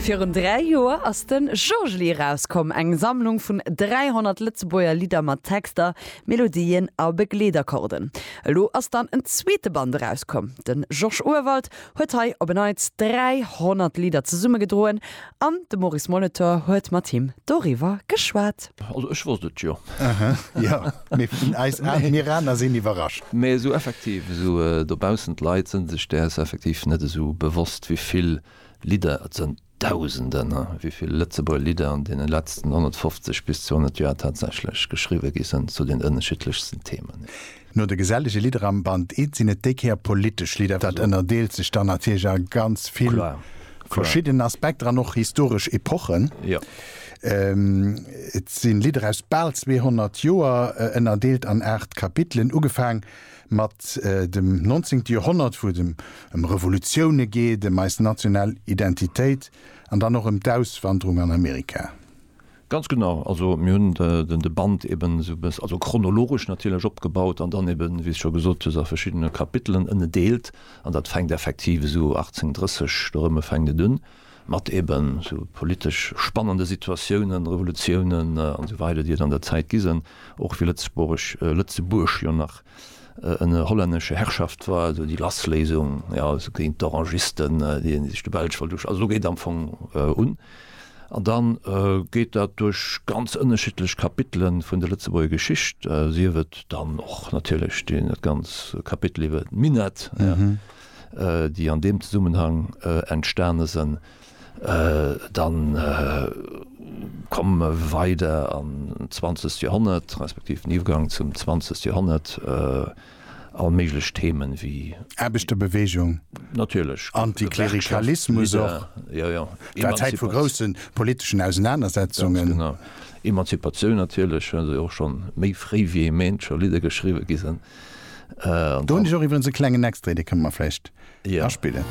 Virun dräi Joer ass de Jojely erauskomm, eng Sammlung vun 300 Lëtzebuerger Lidder mat Texter, Melodien a Begleetakkorden. Elo ass dann en zweete Band erauskomm. De Georges Urwald huet hei op en Neits 300 Lidder zesummegedroen An de Maurice Molitor huet mat him doriwwer geschwat. Also ech wosst et jo. Aha, jo, mee vun eis aner, mir aner sinn iwwerrascht. Mee esou effektiv, esou dobaussen, d'Leit sënn sech däers effektiv net esou bewosst, wéi vill Lidder, et sënn Dausenden, wéi vill Lëtzebuerger Lidder an deene letzten 150 bis 200 Joer tatsächlech geschriwwe gi sënn zu den ënneschiddlechsten Themen. No de gesellege Lidder am Band I sinn et déi Kéier politesch Lidder. Dat ënnerdeelt sech dann natierlech a ganz vill verschidden Aspekter an och historesch Epochen. Et si Lidder aus bal 200 Joer, ënnerdeelt an aacht Kapitelen, ugefaang mat dem Nonzéngte Joerhonnert, wou et ëm Revolutioune geet, ëm eis national Identitéit an dann och ëm d'Auswanderung an Amerika. Ganz genau, also mir hunn de Band eben esou e bëss, also chronologesch natierlech, opgebaut an dann eben, wéi s scho gesot hues, a verschiddene Kapitelen ënnedeelt. An dat fänkt effektiv esou 1830 dorëmme fänkt et un, mat eben esou politesch spannende Situatiounen, Revolutiounen an esou weider, déi et an der Zäit gi sen, och wéi Lëtzebuerg, Lëtzebuerg jo nach ënner hollännesche Herrschaft war, also déi Lassléisung, jo, also géint d'Orangisten, déi sech de Belsch wollt, also do geet am Fong un. An da geet dat duerch ganz ënnerschiddlech Kapitele vun der Lëtzebuerger Geschicht, sief et dann och natierlech dat ganz Kapitel iwwer d'Minett, déi an deem Zesummenhang entstane sinn. Da komme mer weider an d'zwanzegt Joerhonnert, respektiv den Iwwergang zum zwanzegt Joerhonnert. all méiglech Themen wéi. Aarbechterbewegung, Antiklerikalismus och, et war Zäit vu groussen politeschen Ausenanersetzungen. Ganz genau. Emanzipatioun natierlech, well se och scho méi fréi wéi ee Méint scho Lidder geschriwwe gi sinn. Do hunn ech och iwwerens e klengen Extrait, dee kënne mer vläicht aspillen.